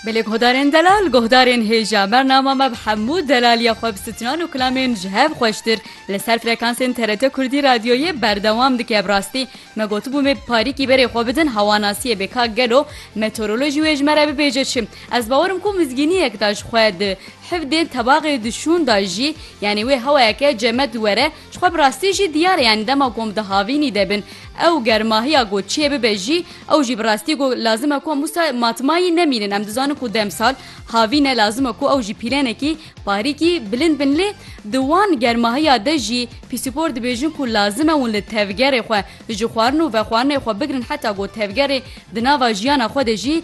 Belê guhdarên delal, guhdarên hêja. Bernama me bi hemû delaliya xwe bi sitinan û kilamên ji hev xweştir li ser frekansên TRT Kurdî Radyoyê berdewam dike. Bi rastî me gotibû me bi parîkî berê xwe bidin hewanasiyê bê ka gelo meteorolojî wê ji me re bibêje çi. Ez bawer im ku mizgîniyek da ji xwe di hivdên tebaxê di şûn da jî yanî wê hewayeke cemed were Ji xwe bi rastî jî diyar e yanî dema ku em di havînî de bin ew ger mahiya ku çiyê bibe jî ew jî bi rastî ku lazim e ku em wisa matmayî nemînin em dizanin ku demsal havîn e lazim e ku ew jî pîlenekî parîkî bilind bin lê di wan germahiya de jî pîsîpor dibêjin ku lazim e hûn li tevgerê xwe ji xwarin û vexwarinê xwe bigirin heta ku tevgerê di nava jiyana xwe de jî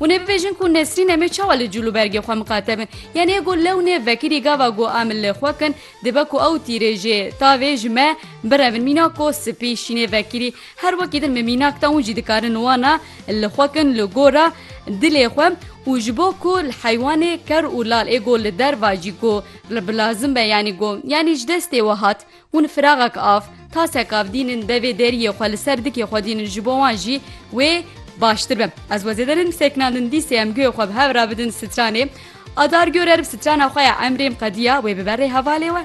Hûn ê bibêjin ku Nesrîn em ê çawa li cûl û bergê xwe miqate bin? Yanî ê ku lewnê vekirî gava ku em li xwe kin, dibe ku ew tîrê jê tavê ji me birevin. Mînak ku spî şînê vekirî her wekî din min mînak da hûn jî dikarin wana li xwe kin li gora dilê xwe û ji bo ku li heywanê ker û lal ê ku li derva jî ku bi lazim be yanî ku yanî ji destê we hat Hûn firaxek av, tasek av dînin devê deriyê xwe li ser dikê xwe dînin ji bo wan jî wê baştir be. Ez we zêde nedim sekinandin dîsê em guhê xwe bi hev re bidin stranê. Adar gor erib strana xwe ya emrêm qediya wê bibe rê hevalê we.